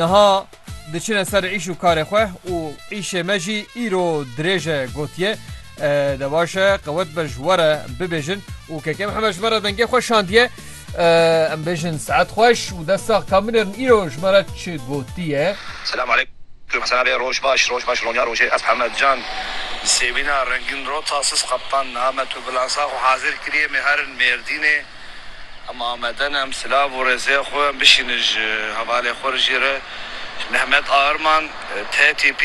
Niha diçine ser îş û karê xwe û îşê me jî îro dirêj e gotiye de baş e qewet be ji we re bibêjin û KK Mihemed ji me re dengê xwe şandiye. Em bêjin saet xweş û dest sax ka binêrin îro ji me re çi gotiye. Selam aleykum Hesen abi roj baş roj baş ronya rojê ez Hemed can sêvîna rengîn ro tasis qeptan name tu bilansa xwe hazir kiriyê me herin mêrdînê. Em amade ne, em silav û rêzê xwe bişînin ji hevalê xwe re jî re. Mehmet Aarman, TTP,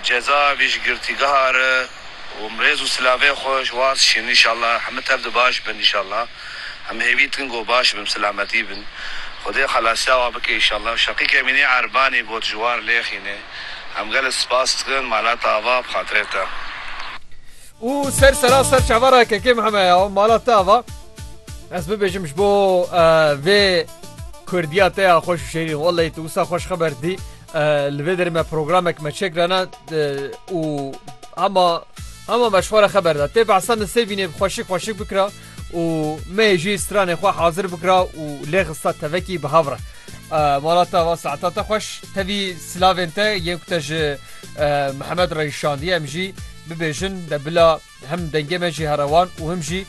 Ceza vî ji girtîgeha re û em rêz û silavê xwe ji wan dişînin înşallah heme tev de baş bin înşallah. Em hêvî dikin ku baş bin, bi silametî bin. Xwedê xelasiya wan bike înşallah. Şeqîk Emînî Erbanî got ji wan lêxîne. Em gelek spas dikin malata ava bi xatirê te. Û ser seraser çavara KKMHM'ê ya mala te ava. Ez bibêjim ji bo vê Kurdiya te ya xweş û şêrîn welleyî tu wisa xweş xeber dî li vê derê me programek me çêkirana û hema hema me ji xwe re xeber da tê behsa min sêvînê bi xweşik xweşik bikira û me jî stranê xwe hazir bikira û lê xista tevekî bi hev re mala te va saeta te xweş tevî silavên te yên ku te ji Mihemed re îşandiye em jî bibêjin de bila Him dengê me jî here wan û him jî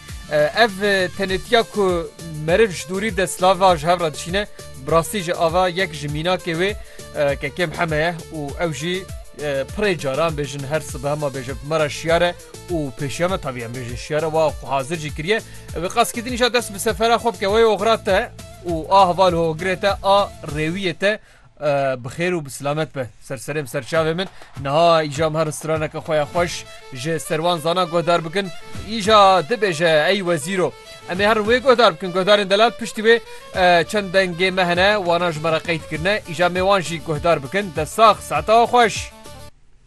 ev tenêtiya ku meriv ji dûrî de silava ji hev re dişîne bi rastî jî ava yek ji mînakê wê kekêm heme ye û ew jî pirê care em bêjin her sibe hema bêje bi me re şiyar e û pêşiya me tavî em bêjin şiyar e wa xwe hazir jî kiriye ew ê qas kidînî jî dest bi sefera xwe bike wê oxira te û a heval hogirê te a rêwiyê te Bi xêr û bi silamet be ser serê min, ser çavê min. Niha îja em herin straneke xwe ya xweş ji ser wan zanan guhdar bikin. Îja dibêje ey wezîr o. Em ê herin wê guhdar bikin. Guhdarên delal piştî wê çend dengê me hene, wana ji me re qeyd kirine. Îja em ê wan jî guhdar bikin. Dest sax, saetewa xweş.